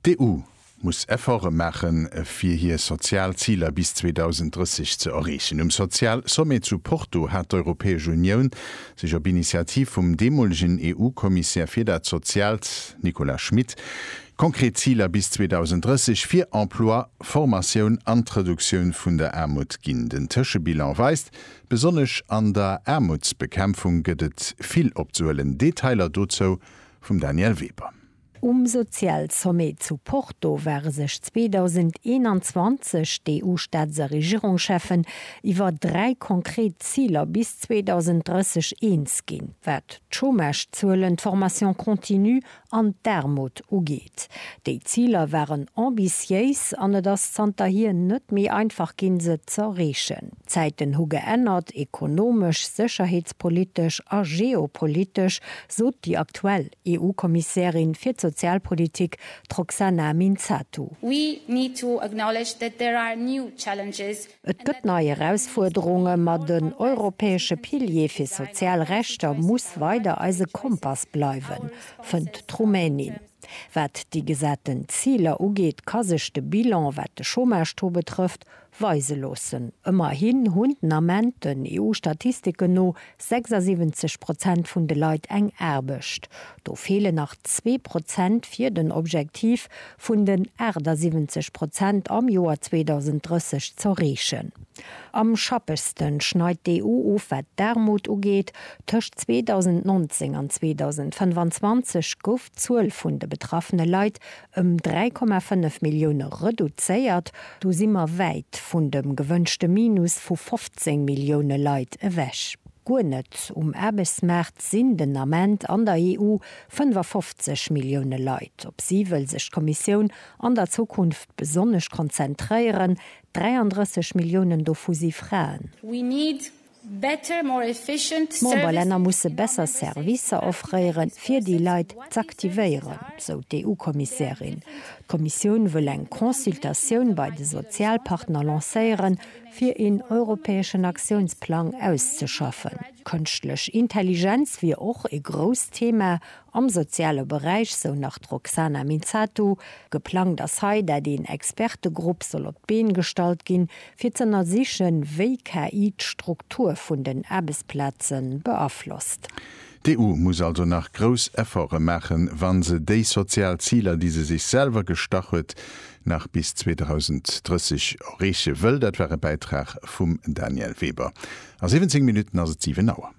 D'EU muss Efforte maachen, fir hir sozial Ziler bis 2030 ze erreechen. Um Sozialsommet zu Porto hat d'Europäesch Unioun sech op Initiativ vum deemolegen EU-Kommissär fir dat Soziaalt, Nicolas Schmit, konkret Ziler bis 2030 fir Emploi, Formatioun an d'Reduktioun vun der Aarmut ginn. Den Tëschebilan weist, Besonnesch an der Aarmutsbekämpfung gëtt et vill opzehuelen. Detailer dozou vum Danièle Weber. Um Sozialsommet zu Porto ware sech 2021 d'EU-Staats a Regierungscheffen iwwer dräi konkret Ziler bis 2030 eens ginn, wat d'Chômagezuelen, d'Formation continue an d'Aarmut ugeet. Déi Ziler waren ambitiéis an et ass zanterhier net méi einfach ginn, se z'erreechen. D'Zäiten hu geännert, ekonomesch, sécherheetspolitesch a geopolitesch, sot déi aktuell EU-Kommissärin fir d'Sozialpolitik, d'Roxana Minzatu. We need to acknowledge that there are new challenges. Et gëtt nei Erausfuerderungen, ma den europäesche Pilier fir sozial Rechter muss weider eise Kompass bleiwen, fënnt d'Rumänin. Wat déi gesaten Ziler ugeet, ka sech de Bilan, wat de Chômage-Taux betrëfft, weise loossen. Ëmmerhin hunn den Ament, den EU-Statistiken no, 76 Prozent vun de Leit eng Aarbecht. Do feelen nach zwee Prozent fir den Objektiv vun den 78 Prozent am Joer 2030 z'erreechen. Am schappegste schneit d'EU of wat d'Aarmut ugeet. Tëscht 2019 an 2025 gouf d'Zuel vun de betraffene Leit ëm 3,5 Millioune reduzéiert. Do si mer wäit vun dem gewënschte Minus vu 15 Millioune Leit ewech. Guer net um Aarbechtsmaart sinn den Ament an der EU 55 Millioune Leit. Op si wëll sech d'Kommissioun an der Zukunft besonnesch konzentréieren. 33 Milliounen dovu si Fraen. D'Memberlänner musse besser Servicer offréiere fir déi Leit z'aktivéieren, sou d'EU-Kommissärin. D'Kommissioun wëll eng Consultatioun bei de Sozialpartner lancéieren, fir een europäeschen Aktiounsplang auszeschaffen. Kënschtlech Intelligenz wier och ee grousst Thema am soziale Beräich, sou nach d'Roxana Minzatu. Geplangt ass hei, dat een Expertegrupp soll op d'Been gestallt ginn, fir z'ënnersichen, wéi KI d'Struktur vun den Aarbechtsplaze beaflosst. D'EU muss also nach grouss Efforte maachen, wa se déi sozial Ziler, déi se sech selwer gestach huet, nach bis 2030 erreeche wëll. Dat war e Bäitrag vum Daniel Weber. A 17 Minutten ass et 7 Auer.